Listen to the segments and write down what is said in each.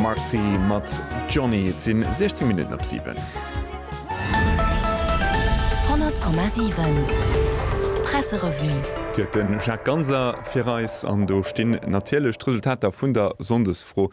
Marcy mat Johnny. Et sinn 16 Minutten op 7. 100,7 Presserevue. Déi huet de Jacques Ganser fir eis an do stinn natierlech d'Resultater vun der Sonndesfro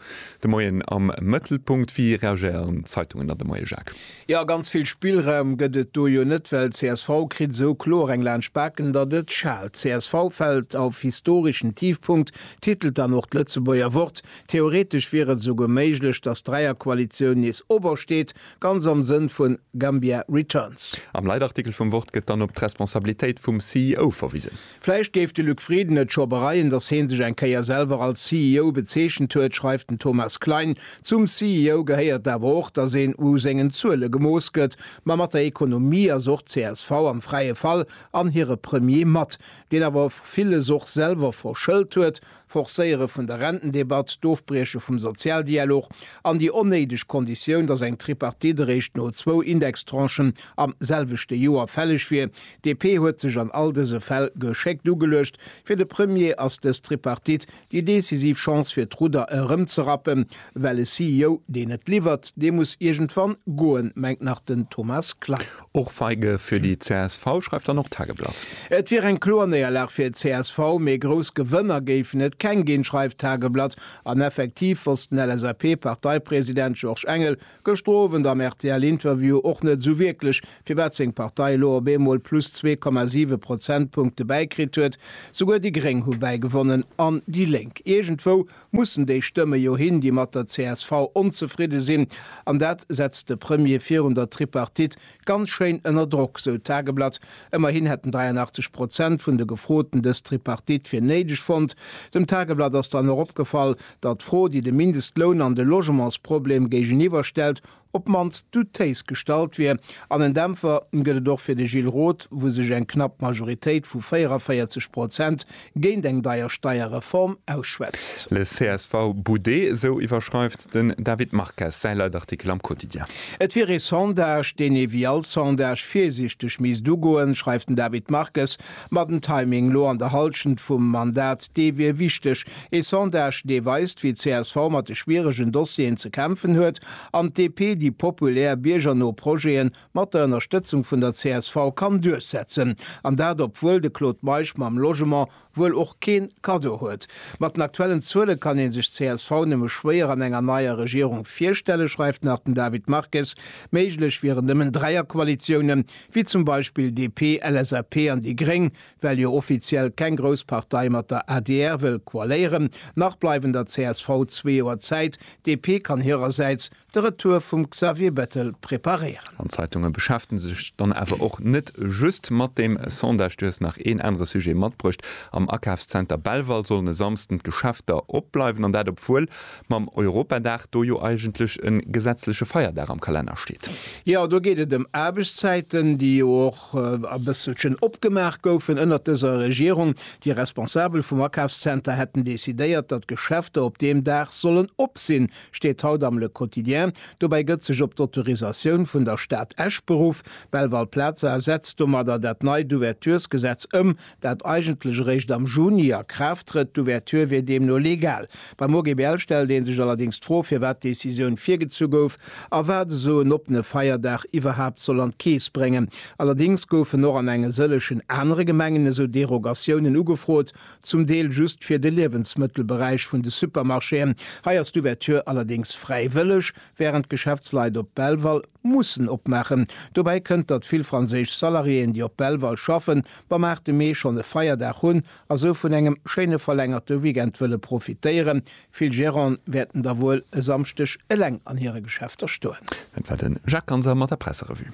de Moien am Mëttelpunkt. Wéi reagéieren d'Zeitungen an de Moie, Jacques? Jo, ganz vill Spillraum gëtt et do jo net, well csv kritt esou kloer eng laanscht d'Baken, datt et schaalt. Csv fält auf historischen Tiefpunkt, titelt dann och d'Lëtzebuerger Wort. Theoretesch wier et esouguer méiglech, datt d'Dräierkoalitioun nees obersteet, ganz am Sënn vu Gambia Returns. Am Leitartikel vum Wort gëtt dann op d'Responsabilitéit vum CEO verwisen. Vläicht géif de Luc Frieden et scho bereien, datt hee sech eng Kéier selwer als CEO bezeechent huet, schreift den Thomas Klein. Zum CEO gehéiert awer och, datt een u sengen Zuele gemooss gëtt. Ma mat der Ekonomie ass och csv am fräie Fall an hire Premier mat, deen awer villes och selwer verschëllt huet, Forcéiere vun der Rentendebatt, d'Ofbrieche vum Sozialdialog an déi onnéideg Konditioun, datt eng Tripartite eréischt no zwou Indextranchen am selwechte Joer fälleg wier. DP huet sech an all dëse Fäll geschéckt ugeluecht. Fir de Premier ass dës Tripartite déi decisiv Chance fir d'Rudder erëmzerappen, well e CEO, deen net liwwert, dee muss iergendwann goen, mengt nach den Thomas Klein. Och Feige fir déi csv, schreift dann och d'Tageblatt. Et wier eng kloer Néierlag fir csv, mee grouss Gewënner géifen et keng ginn, schreift d'Tageblatt. An effektiv wosst den LSAP-Parteipresident Georges Engel gëschter Owend am RTL-Interview och net esou wierklech, firwat seng Partei elo op eemol plus zwee Komma siwe Prozentpunkte bäikritt huet. Souguer déi Gréng hu bäigewonnen an déi Lénk. Iergendwou mussen déi Stëmme jo hin, déi mat der csv onzefridde sinn. An dat setzt de Premier virun der Tripartite ganz schéin ënner Drock, sou d'Tageblatt. Ëmmerhin hätten 83 Prozent vun de Gefroten dës Tripartite fir néideg fonnt. Dem Tageblatt ass dann och opgefall, datt d'Fro, déi de Mindestloun an de Logementsproblem géigeniwwer stellt, op d'mannst doutéis gestallt wier, an en Dämpfer gëtt et och fir de Gilles Roth, wou sech eng knapp Majoritéit vu 44 Prozent géint eng deier Steierreform ausschwätzt. Le csv boudet, esou iwwerschreift den David Marques säi Leitartikel am Quotidien. Et wier ee Sondage, deen ee wéi all Sondage virsiichteg misst ugoen, schreift den David Marques. Ma den Timing lo an der Halschent vum Mandat, dee wier wichteg. Ee Sondage, dee weist, wéi csv mat de schwieregen Dossieren ze kämpfen huet an d'DP déi populär, biergerno Projete mat der Ënnerstëtzung vun der csv kann duerchsetzen. An dat obwuel de Claude Meisch mam Logement wuel och keen Cadeau huet. Mat den aktuellen Zuele kann ee sech csv nëmme schwéier an enger neier Regierung virstellen, schreift nach den David Marques. Méiglech wieren nëmmen Dräierkoalitiounen, wéi zum Beispill DP, LSAP an déi Gréng, well jo offiziell keng grouss Partei mat der adr wëll koaléieren. Nach bleiwen der csv zwee Joer Zäit. DP kann hirersäits de Retour vum Xavier Bettel preparéieren. An d'Zeitunge beschäftege sech dann awer och net just mat deem Sondage. Du hues nach een anere Sujet matbruecht. Am Akafszenter Belval sollen e Samsden d'Geschäfter opbleiwen, an dat obwuel mam Europadag, do jo eigentlech e gesetzleche Feierdag am Kalenner steet. Jo, do geet et ëm Aarbechtszäiten, déi jo och e bësselchen opgemaach goufen ënnert dëser Regierung. Déi Responsabel vum Akafszenter hätten decidéiert, datt Geschäfter op deem Dag sollen op sinn, steet haut am Le Quotidien. Dobäi gëtt sech op d'Autorisatioun vun der Stad Esch beruff. Belval-Plaza setzt domadder dat neit Ouverturesgesetz ëm, dat eigentlech eréischt am Juni a Kraaft trëtt, d'Ouverture wier deemno legal. Beim OGBL stellt ee sech allerdéngs d'Fro, firwat d'Decisioun virgezu gouf a wat esou en oppene Feierdag iwwerhaapt soll an d'Keess bréngen. Allerdéngs goufen och an enge sëllechen anere Gemengen esou Derogatiounen ugefrot, zum Deel just fir de Liewensmëttelberäich vun de Supermarchéen. Hei ass d'Ouverture allerdéngs fräiwëlleg, wärend d'Geschäftsleit op Belval mussen opmaachen. Dobäi kënnt, datt vill franséisch Salariéen, déi op Belval schaffen, Wa maart de Mee schonn e Feierdag hunn a sou vun engem schéine verlängerte Weekend wëlle profitéieren, vill Gerante wäerten da wuel e Samschdeg eleng an hire Geschäfter stoen. Dat war de Jacques Ganser mat der Presserevue.